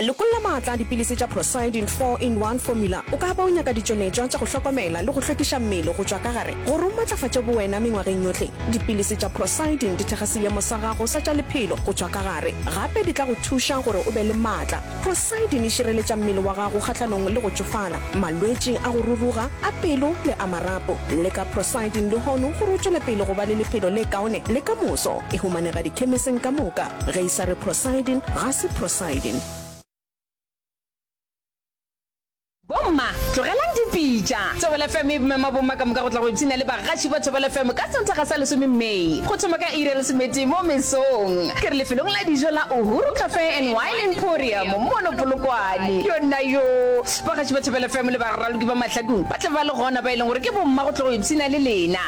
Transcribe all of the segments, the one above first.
Lekolla maatla a dipilisi tša Procyidin Four in One Formula. O ka ba o nyaka ditšonetšwa tša go hlokomela le go hlwekiša mmele go tšwa ka gare gore o matlafatše bowena mengwageng yohle. Dipilisi tša Procyidin di thekga seemo sa gago sa tša lephelo go tšwa ka gare. Gape di tla go thuša gore o be le maatla. Procyidin e šireletša mmele wa gago kgahlanong le go tšofala, malwetši a go ruruga, a pelo le a marapo. Leka Procyidin lehono gore o tšwele pele go ba le lephelo le kaone le ka moso. E humanega dikhemising ka moka. Ge e sa re prosiding, ga se prosiding. Bomma, tlogelang dipitša. Thobela FM e mema bomma ka moka go tla go ipshina le bagaši ba Thobela FM ka Sontaga sa lesome May, go thoma ka iri ya lesometee mo mesong. Ke re lefelong la dijo la Uhuru Cafe and Wine Emporium mono Polokwane. Yonnayoo! Bagaši ba Thobela FM le baraloki ba mahlakong ba tla ba le gona, ba e leng gore ke bomma go tlo go ipshina le lena.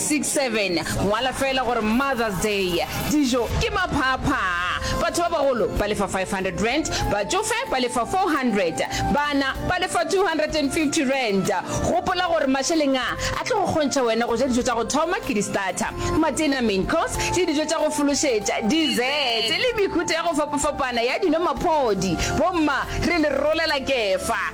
67, ngwala feela gore Mother's Day, dijo ke maphaaphaa, batho ba bagolo ba lefa R500, batšofe ba lefa R400, bana ba lefa R250. Gopola gore mašeleng a, a tlo go kgontšha wena go ja dijo tša go thoma ke di-starter, matena, main course, le dijo tša go fološetša, dessert, le mehuta ya go fapafapana ya dino-maphodi. Bomma, re le rolela kefa!